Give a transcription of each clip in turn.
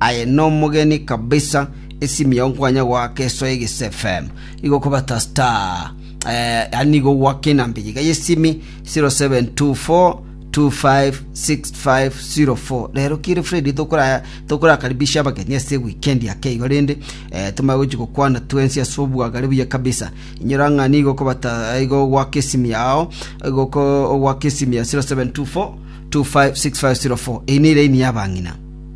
Aye nomogeni kabisa esimi yao nkwanya goaka esoe gese fm igo kobata star eh, yani igo goaka enamba eye iga yesimi 0724256504 rero kire fredi tokora tokorakaribisha abageni ase weekend yake igo rende eh, tomanye gochi gokwana twensi ase obwagare buya kabisa inyora ng'a nigo kobata igo goaka esimi yao igo ko- goaka esimi ya 0724 256504 eye neraini yabang'ina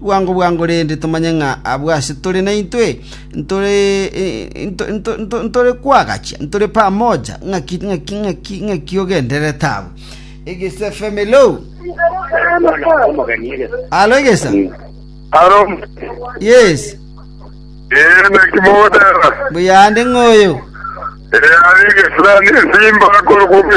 Bwango bwango rende tomanye ng'a abwo ase tore naintwe ntore kwagachia, ntore pamoja. Ng'aki, ng'aki, ng'aki, ng'aki ogendererete abwo? Egesa FM, hello. Alo egesa. Aro. Yes. Eh, naki mogotera. Buyande ng'oyo. Eh, ari gesirani esimba koro kumwe.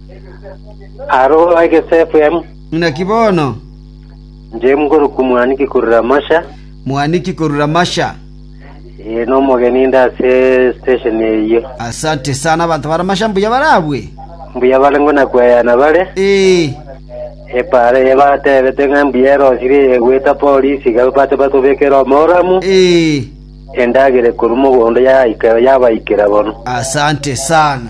Arooro egesefu em. Naki bono. Inche ngorokwa mwaniki korwa Ramasha. Mwaniki korwa Ramasha. Ee, nomogeni inde ase stesheni eyio. Asante sana, abanto ba Ramasha mbuya barabwe? Mbuya bare ngona kweyana bare. Ee. Epaara eye batebete ng'a mbuya erosire eye gweta polisi iga bache batobekere omoramu. Ee. Endagere korwa mogondo yaika yabaikera bono. Asante sana.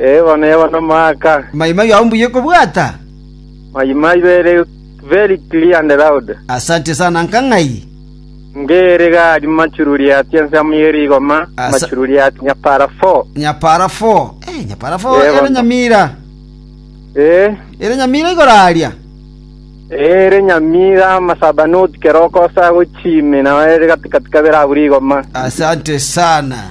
Ee, bono yaba nomoaka. Mayimayu ao mbuya okobwata? Mayimayu ere very clear and loud. Asante sana nka ng'ai? Ngere gari machururi ati ensemo ye rigoma, Asa- machururi ati nyapara four. Nyapara fo. Eh, nyapara fo Yebo, ere no. nyamira. Ee, Ere nyamira igoro aria. ere nyamira amasaba noti keroko ase agochimi, nao ere gatikati kabere abu rigoma. Asante sana.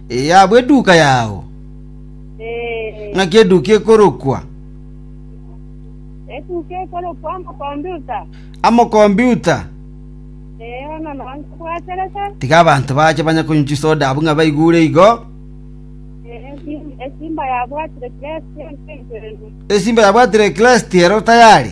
Ee, abwo eduka yao. Ee, Ng'aki eduka ekorokwa etuke ekorokwa amakombiuta. amokombiuta. Ee, bono nao nkabwaterete. Tiga abanto bache banya konywa chisoda abwo ng'a baigure igo. Ee, esim- esimba yabwatire kiresi entenkereri. Esimba yabwatire Kristo ero tayari.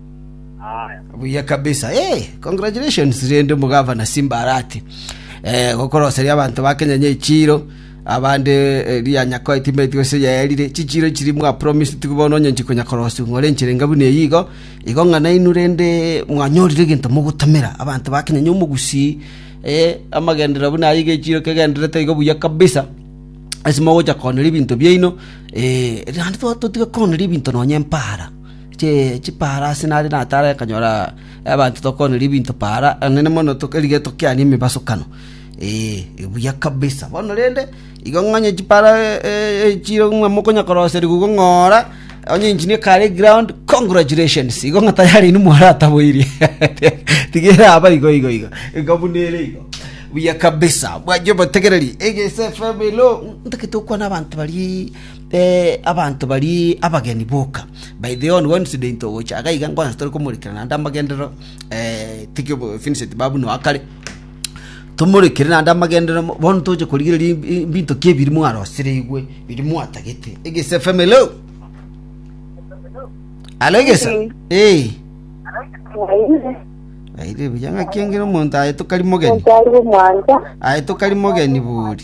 Haya. buya kabisa hey, congratulations rende omogavana simba arati eh, gokoroseria abanto ba kenya nyechiro abande eh, rianyako etimeti gose yaerire chichiro chiri mwa promise tigu bono onye nchikonya korosu ng'ore enchire nga buna eyigo igo ng'a nainu rende mwanyorire egento mogotomera abanto ba kenya nyomogusi eh, amagendera buna ayi gechiro kegenderete igo buya kabisa ase mogocha koonera ebinto biaino eh, rende twa- totiga koonera ebinto nonye empara che chipaarasi nare natare akanyora abanto tokoonera ebinto paara enene mono erige tokiane emebasokano. Ee, buya kabisa. Bono rende, igo ng'onye chipaara echire ng'a mokonya koroserigwa igo ng'ora onye engine ekare eground, congratulations! Igo ng'a tayari inwe mwarataboirie. Tiga eraba igo igo igo, iga buna ere igo. Buya kabisa, bwancha obotegereri. Egese FM hello, ntagete gokwana abanto baria Abanto baria abageni boka baidha Yohana bwa Incident ogocha iga iga nkonya tore komorekera naende amagenderero tiki Vincent bwa buna kare tomorekere naende amagenderero bono toche korigereria ebinto ki ebiri mwarosereirwe biri mwatagete egese FM hello Hello egesa eh Aire buya ng'aki engere omonto aye tokari mogeni Mwanza. aye tokari mogeni buri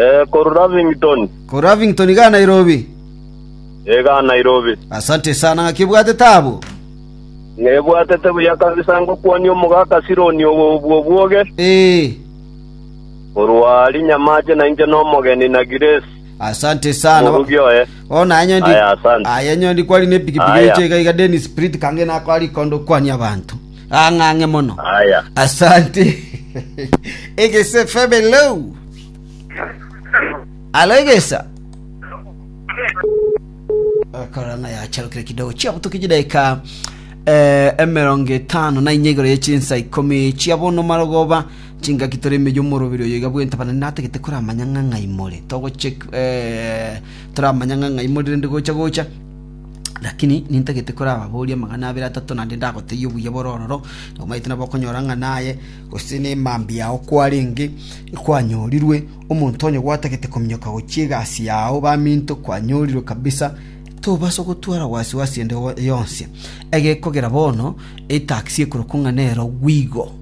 Eh, koru Lavington. Ko Ravington iga Nairobi. Ega Nairobi. Asante sana ng'aki obwate taabu. Nebwatete buya kabisa ngokwania omogaka Sironi obo obwo obwoge, Eh, korwa aria nyamache na inche nomogeni na Grace. asante sana. Morugi oye. Bono aya nyondi. Aya, asante. Aya nyondi kwari ne pikipiki Aya. eche iga iga Dennis Sprit kange nakora rikondo kwania abanto. Ang'ang'e mono. Aya. Asante. Egese FM hello. Alo egesa. Korang'a yacharukire kidogo chiabutuki chidaika eh, emerongo etano na inye igoro yechinsa ikomi chiabono marogoba chingaki tore emeyo omorobiri oyo iga bwenta bana natagete koramanya ng'a ng'ai more togochek eh, toramanya ng'a ng'ai more rende gocha gocha Lakini nintagete korababorie amang'ana abere atato, naende ndagotebie obuya bore ororo, na omanyete nabo okonyora ng'a naye, gose nemambia yao kwarenge kwanyorirwe. Omonto onye gwatagete kominyoka gochia egasi yao baminto kwanyorirwe kabisa, tobasa gotwara wasiwasi ende yonsi. Egekogera bono, etaxi ekorokwa ng'a nero Gwigo.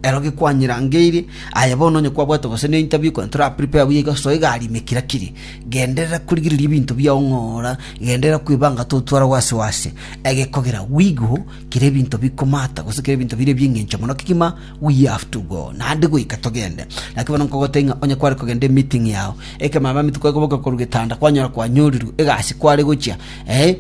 Ero gekwanyerangeire, aye bono onye kwabwate gose ne interview kore tora prepare buya iga soa egari ime kira kiri. Genderera korigereria ebinto biao ng'ora, genderera kwebanga totwaragwe ase o ase. Egekogera wighu kera ebinto bikomata gose kera ebinto bire ebi'engencho mono kegima we have to go, naende goika togende. Naki bono nkogotebia ng'a onye kware kogenda emeeting yao, ekero mambia maminto kware koboka korwa getanda kwanyora kwanyorirwe egasi kware gochia, eh.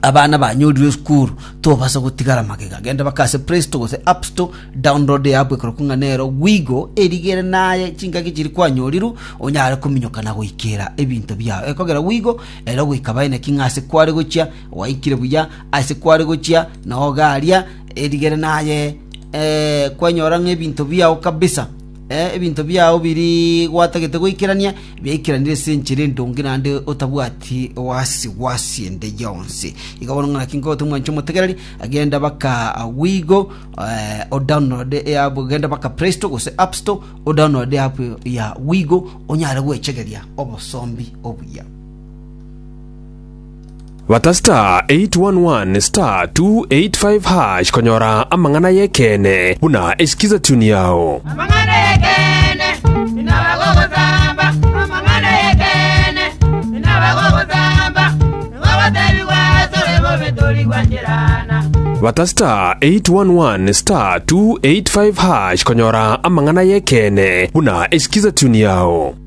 Abana banyorirwe esukuru tobasa gotigara magega, genda bake ase Play Store gose App Store, download eapp ekorokwa ng'a nero Wigo, erigere naye chingaki chiria kwanyorirwe, onyare kominyoka na goikera ebinto biao. Ekogera Wigo, ere ogoika baene ki ng'a ase kware gochia gwaikire buya, ase kware gochia nao garia, erigere naye eh, kwanyora ng'a ebinto biao kabisa. Ebinto biao biri gwatagete goikerania, biaikeranire ase enchera endonge naende otabwati oasi gw'asi ende yonsi. Iga bono ng'a naki nkogote omwancha omotegereri, genda baka Wigo, eh, o download app, genda baka Play Store gose App Store, o download app ya Wigo, onyare gwechegeria obosombi obuya. Bata *811*285# konyora amang'ana y'ekeene buna esikiza tune yao. Amang'ana y'ekeene inaba gogosamba, amang'ana y'ekeene inaba gogosamba, nigo gotebigwa asore bobe tori gwancherana. Bata *811*285# konyora amang'ana y'ekeene buna esikiza tune yao.